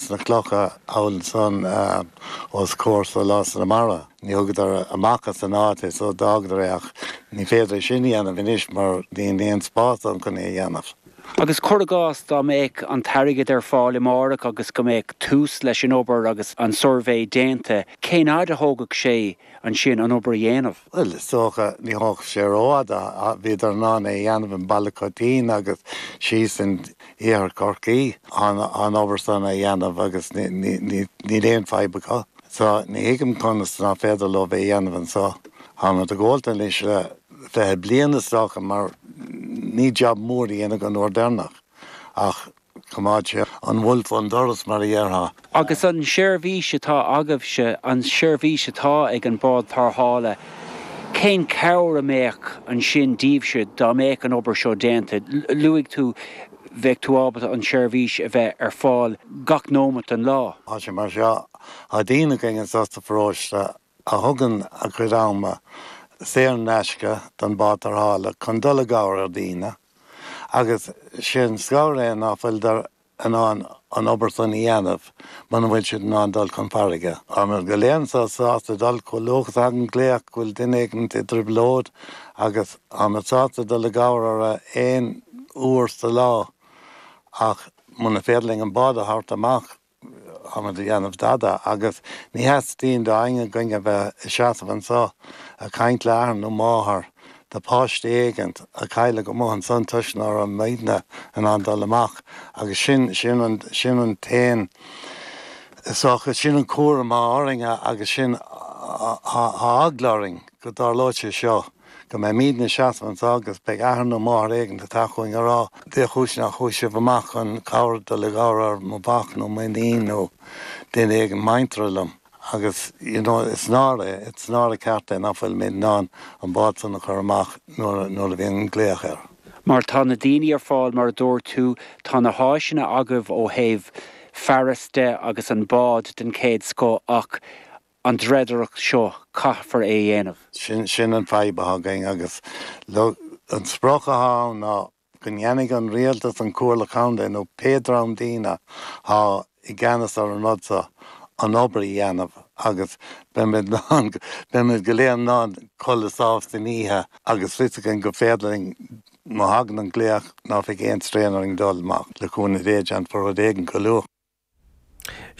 sna clocha amhail san os comhair sa lá sa mbarra níor thugadar amach as an áit is so d'fhágadar é ach ní féidir sin a dhéanamh anois mar níl aon spás ann chun é a dhéanamh. Agus cuir i gcás dá mbeadh an t-airgead ar fáil amáireach agus go mbeadh tús leis an obair agus an suirbhé déanta cén fhaid a thógfadh sé ansin an obair a dhéanamh. Bhuel, is dócha, ní thógfadh sé rófhada ach bhíodar in ann é a dhéanamh i mBaile Choitín agus síos in iarthar Chorcaí an obair san a dhéanamh agus níl aon fadhb acu. So, ní thuigim conas ná féidir leo é a dhéanamh anso. Táimid ag gabháil dó anois le fiche bliain is dócha ó rinneadh job mór a dhéanamh an uair deirneach ach, Choimeád sé an wolf ón doras mar a dhéarfá. Agus an seirbhís atá agaibhse, an seirbhís atá ag an bád tarrthála, cén cabhair a bheadh ansin daoibhse dá mbeadh an obair seo déanta? Luaigh tú bheadh tú ábalta an tseirbhís a bheith ar fáil gach nóimeat den lá. Tá sé mar seo, tá daoine againn anso sa pharóiste a thugann a chuid ama saor in aisce don bhád tarrthála chun dul i gcabhair ar daoine, agus is é an scannal é ná fuiltear in ann an obair san a dhéanamh muna bhfuil siad in ann dul chun farraige. Táimíd go léir annso sásta dul chomh luath is a thagann glaoch go bhfuil duine éigint i dtrioblóid agus táimid sásta dul i gcabhair orra aon uair sa lá ach muna féidir linn an bád a thabhairt amach Tada a dhéanamh dada agus ní theastaíonn d'éinne againn a bheith ina seasamh annso ag caint le athair nó máthair do páiste éigin a cailleadh amuigh annsan toisc ná raibh muidne in ann dul amach agus sin, sin an, sin an t-aon is dócha, sin an cúram thá orainn agus sin thá eagla orainn go dtarlóidh sé seo. go mbeimíd ina seasamh anso agus beidh athair nó máthair éigin ag teacht chugainn a rá, Dé chúis nach chuaigh sibh amach chun cabhair dul i gcabhair ar mo mhac nó m'iníon nó duine éigin muinteartha liom. Agus, you know, is náire, is náire ceart é nach bhfuilimíd in ann an bád san a chur amach nuair, nuair a bhíonn an glaoch air. Mar tá na daoine ar fáil mar a dúirt tú, tá na háiseanna agaibh ó thaobh fearais de agus an bád den chéad scoth ach, an dreidireacht seo caithfear é dhéanamh. Sin, sin an fadhb athá againn agus le, an sprioc athá ann ná go ndéanfaidh an Rialtas, an Comhairle Contae nó pé dream daoine athá i gceannas ar an rud so, an obair a dhéanamh agus beimid lán, beimid go léir in ann codladh sámh san oíche agus fios againn gur féidir linn, má thagann an glaoch, ná bheidh aon straen orainn dul amach le cúnamh Dé, déanfar rud éigin go luath.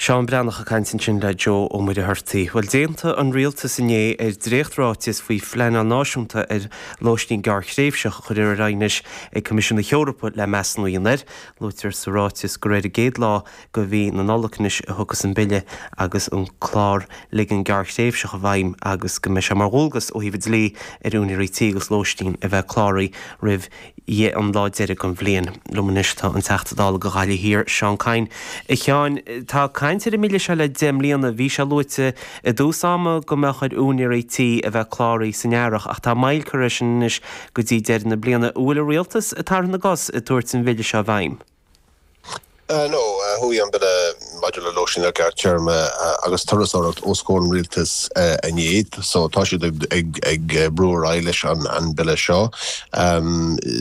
Seán Breathnach ag caint ansin le Joe Ó Muircheartaigh. Bhuel, d'aontaigh an Rialtas inné ar dréacht-ráiteas faoi phleanáil náisiúnta ar lóistín gearr-thréimhseach a chuirfear anois ag Coimisiún na hEorpa le measúnú a dhéanamh air. Luaitear sa ráiteas gur ar an gcéad lá de mhí na Nollag anois a thiocfas an Bille agus an clár ligean gearr-thréimhseach i bhfeidhm agus go mbeidh sé mar dhualgas ó thaobh an dlí ar úinéirí tí agus lóistín a bheith cláraithe roimh ie an lá deiridh den bhliain. liom anois tá an Teachta Dála do Ghaillimh Thiar, Seán Kyne. A Sheáin, tá caint ar an mBille seo le deich mbliana. Bhí sé luaite i dtús ama go mbeadh ar úinéirí tí a bheith cláraithe san Earrach ach tá moill curtha ar sin anois go dtí deireadh na bliana. An bhfuil an Rialtas ag tarraingt na gcos ag tabhairt an Bhille seo i bhfeidhm? No, chuaigh an Bille maidir le Lóistín ar Ghearrthéarma agus Turasóireacht os comhair an Rialtais inné, so tá siad ag brú ar aghaidh leis an Bille seo.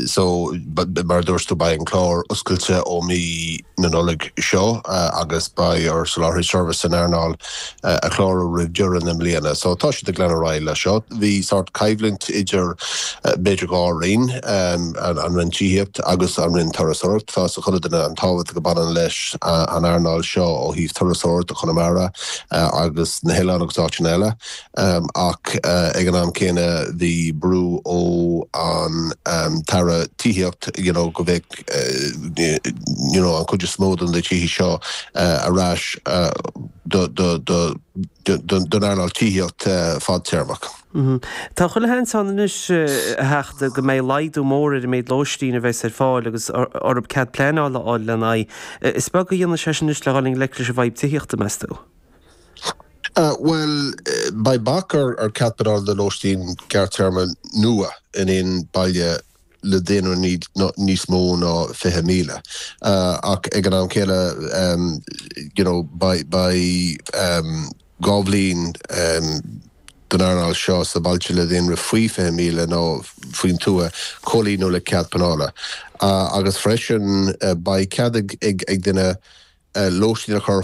So, mar a dúirt tú, beidh an Clár oscailte ó mhí na Nollag seo agus beidh ar sholáthraithe seirbhíse san earnáil a chlárú roimh deireadh na mbliana. So tá siad ag leanacht ar aghaidh leis seo. Bhí sórt coimhlint idir b'fhéidir dhá roinn, an Roinn Tithíocht agus an Roinn Turasóireacht. Tá 'fhios ag chuile duine an tábhacht a baineann leis an earnáil seo ó thaobh turasóireacht do Chonamara agus na hOileáin agus áiteanna eile. Ach ag an am céanna bhí brú ó an tAire Tithíocht you know go mbeadh you know an chuid is mó de na tithe seo ar ais do do do don don earnáil tithíocht fadtéarmach. Tá chuile sheans ann anois a Theachta go mbeidh laghdú mór ar an méid lóistín a bheas ar fáil agus orthu cead pleanála a fháil lena aghaidh. Is beag a dhéanfas sé sin anois le dhul i ngleic leis an bhfadhb tithíochta meas tú? Bhuel, beidh bac ar chead pleanála do lóistín gearrtéarma nua in aon baile le daonra níos mó ná 20,000 ach ag an am céanna you know beidh dhá bhliain don earnáil seo sna bailte le daonra faoi 20,000 nó faoin tuath comhlíonadh le cead pleanála agus freisin beidh cead ag duine lóistín a chur